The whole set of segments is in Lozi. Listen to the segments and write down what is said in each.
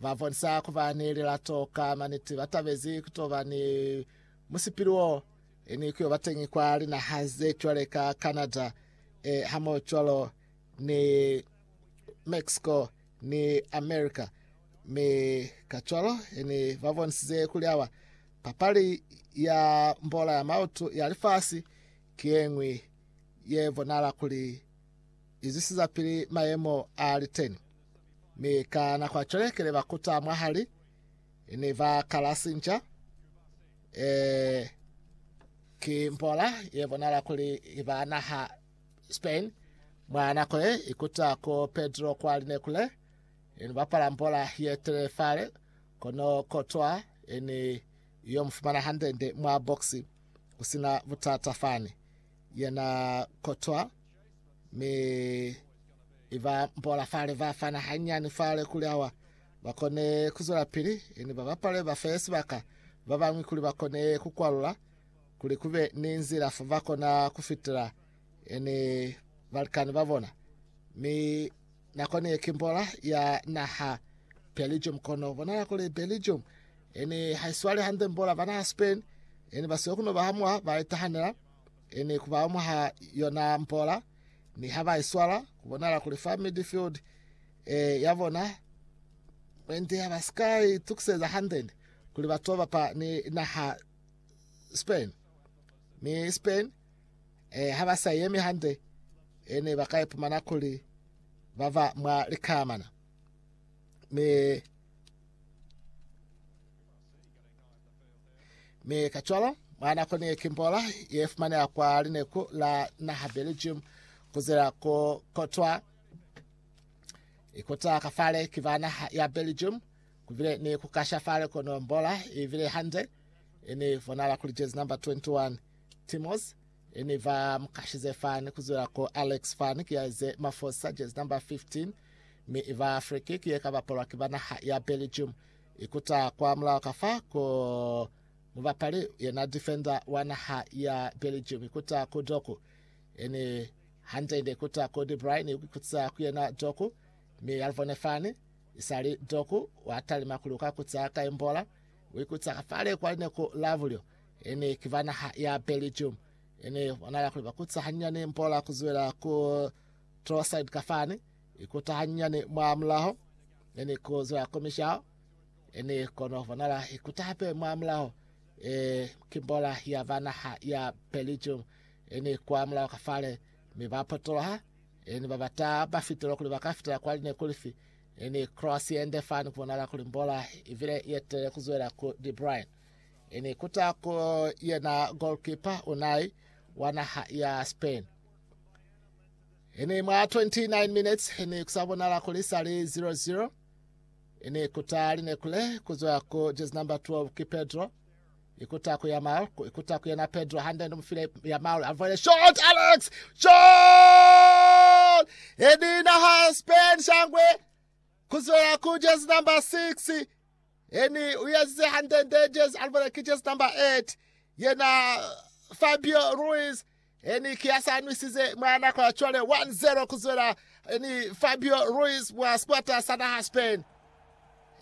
Ba bonisa ku ba ni lilato ka maniti ba tabezi ku to ba ni musipili wo ni ku yo ba teñi kwa linaha ze cwale ka Canada, e, hamohocwalo ni Mexico ni America. Mi kacwalo ni ba bonisize kuli awa papali ya mbola ya mautu ya lifasi ki ye ñwi ye bonahala kuli i zwisiza pili mayemo a liteni. Mi ka nako ya cwale kile ba kuta mwahali, ne ba kala sinca. E, ki mbola ye bonala kuli iba naha Spain. Mwa nako ye ikuta ku Pedro kwa line kule, ni bapala mbola ye tele fale, kono kotwa ni yo mufumana handende mwa boksi, kusina butata fani. Yena kotwa. Mi i ba mpola fale, ba fana hanyani fale kuli awa ba kone ku zwelapili, ni ba bapale ba fe sibaka ba bañwi kuli ba kone ku kwalula, kuli ku be ni nzila fo ba kona ku fitela ni balikani ba bona. Mi nako ni ye ki mpola ya naha Belgium, kono bonala kuli Belgium ni ha i swali hande mpola ba naha Spain, ni ba siyo ku no ba hamuha ba itahanela. Ini ku ba mwa ha yona mpola, ni ha ba i swala, ku bonala kuli fa midfield e ya bona mwendi ha ba si ka itukiseza hande ni kuli ba to bapa ni naha Spain. Mi Spain e, ha ba sa yemi hande, e ne ba ka ipumana kuli ba ba mwa likamana. Mi Mi kacwalo, mwa nako ni kimbola ye fumaneha kwa lineku la naha Belgium kuzela ku kotwa ikuta kafale ki ba naha ya Belgium kubile ni kukasha fale kono mbola ibile hande ini bonala kuli jezi number 21 Timos ini ba mukashize fani kuzela ku Alex fani ki yaize mafosa jezi number 15 mi iba free kick ye kabapolwa ki ba naha ya Belgium Ikuta kwa mulaho ka fa ku mubapali yena defender wa naha ya Belgium ikuta ku Doku. Eni hande-nde ikuta ku De Bruyne ikuta ku yena Doku, mi ya livone fani. Isali Doku wa talima kuli uka kuta ka imbola, uikuta ka fale kwa lineku la bulyo. Eni ki ba naha ya Belgium. Eni bonala kuli bakuta hanyinyani imbola kuzwela ku Trossard ka fani. Ikota hanyinyani mwamulaho, ne ni kuzwa ku mishao, e ni kono bonala ikota hape mwamulaho, e ki mbola ya ba naha ya Belgium, e ni kwa mulaho ka fale, mi ba potoloha, e ni ba bata ba fitelo kuli ba ka fitela kwali ne kuli fi, e ni cross yende fani kubonala kuli mbola ibile yetelele kuzwela ku De Bruyne. E ni kuta ku yena goalkeeper Unai wa naha ya Spain. Ene mwa 29 minutes ne ku sa bonala kuli sa li 0-0. Ene kuta li ne kule ku zwa ku jezi number 12 ki Pedro. Ikuta ku ya Maul, ku ikuta ku yena Pedro hande ndi mufile ya Maul a vwele shot Alex! Shot! Edina ha Spain shangwe ku zwa ku jezi number 6. Eni u yazize hande ndi jezi a vwele ki jezi number 8 yena Fabio Ruiz E ni ki a sa nwisize mwa nako ya cwale 1-0 ku zwela e ni Fabio Ruiz mwa sikwata sa naha Spain.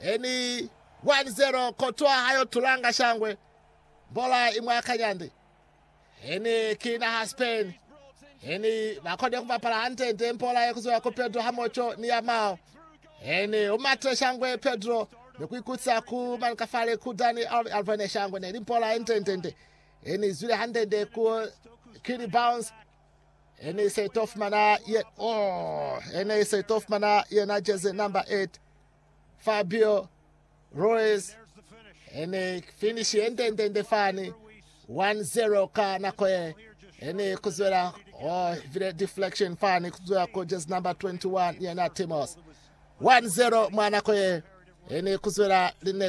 E ni 1-0 kotwa ha yo tulanga shangwe mbola i mwa kanyandi. E ni ki naha Spain e ni ba kone ku bapala hande nde mbola ye ku zwela ku Pedro ha moco ni ya mao. E ni u matile shangwe Pedro ni ku ikutisa ku manikafale ku Dani Alvane shangwe ne li mbola ye nde nde nde. He ni zwile hande-nde ku Kili Bounce, he ni se to fumana ye, oh, he ni se to fumana yena jersey number 8, Fabio Ruiz. He ni finish ye nde-nde-nde fani, 1-0 ka nako ye. He ni kuzwela, oh, vile deflection fani kuzwela ku jersey number 21 yena Timos. 1-0 mwa nako ye. He ni kuzwela line